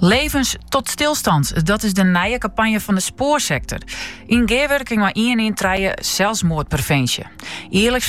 Levens tot stilstand, dat is de nije kampanje fan de spoarsektor. Yn gearwurking mei ien ien trije selsmoardprevinsje. Jierliks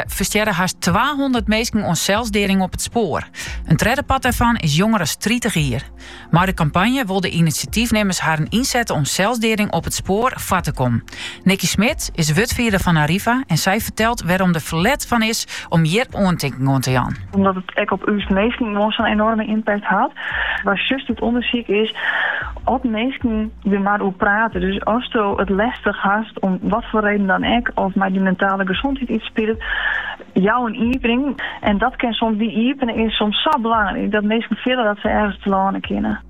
ferstjerre hast 200 minsken oan selsdeading op it spoar. In tredde part dêrfan is jonger as tritich jier. Mei de kampanje wol de inisjatyfnimmers harren ynsette om selsdeading op it spoar foar te kommen. Nicky Smit is wurdfierder fan Arriva en sy fertelt wêrom der ferlet fan is om hjir oantinking oan te jaan. Omdat it ek op ús minsken gewoan sa'n enoarme impact hat. Wat sjochst út ûndersyk is as minsken der mar oer prate. Dus asto it lestich hast, om wat foar reden dan ek, of mei dyn mentale gesondheid iets spilet, jou in iepening. En dat kin soms, dy iepening is soms sa belangryk dat minsken fiele dat se ergens telâne kinne.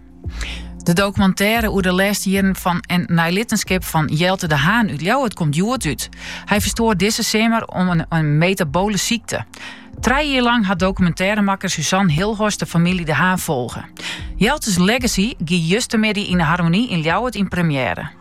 De documentaire oer de lêste jierren fan en neilittenskip fan Jelte de Haan út Ljouwert komt hjoed út. Hy ferstoar dizze simmer om in metabole sykte. Trije jier lang hat documentairemakker Suzanne Hilhorst de famylje De Haan folge. Jelte's Legacy gie justermiddei yn de Harmonie yn Ljouwert yn première.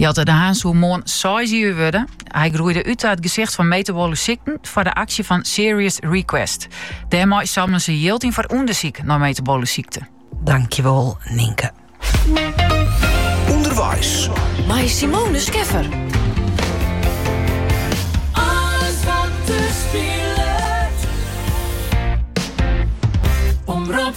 Jelte de Haan soe moarn seis jier wurde. Hy groeide út ta it gesicht fan metabole sykten foar de aksje fan Serious Request. Dêrmei samelen se jild yn foar ûndersyk nei metabole sykten. Dankjewol Nynke. Underweis. Mei Simone Scheffer. Omrop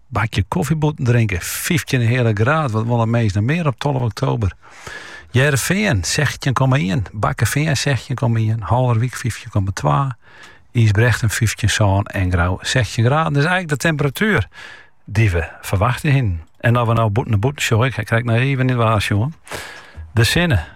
Bakje koffy bûten drinke, fyftjin en in heale graad, wat wolle minsken noch mear op tolve oktober? Hearrenfean sechstjin komma ien, Bakkefean sechstjin komma ien, Haulerwyk fyftjin komma twa, Ysbrechtum fyftjin sân en Grou sechstjin graden. It is eigenlik de temperatuer dy't we ferwachte hienen. En at we no bûten, nei bûten sjogge, krij ik noch even niet waar sjoen. De sinne.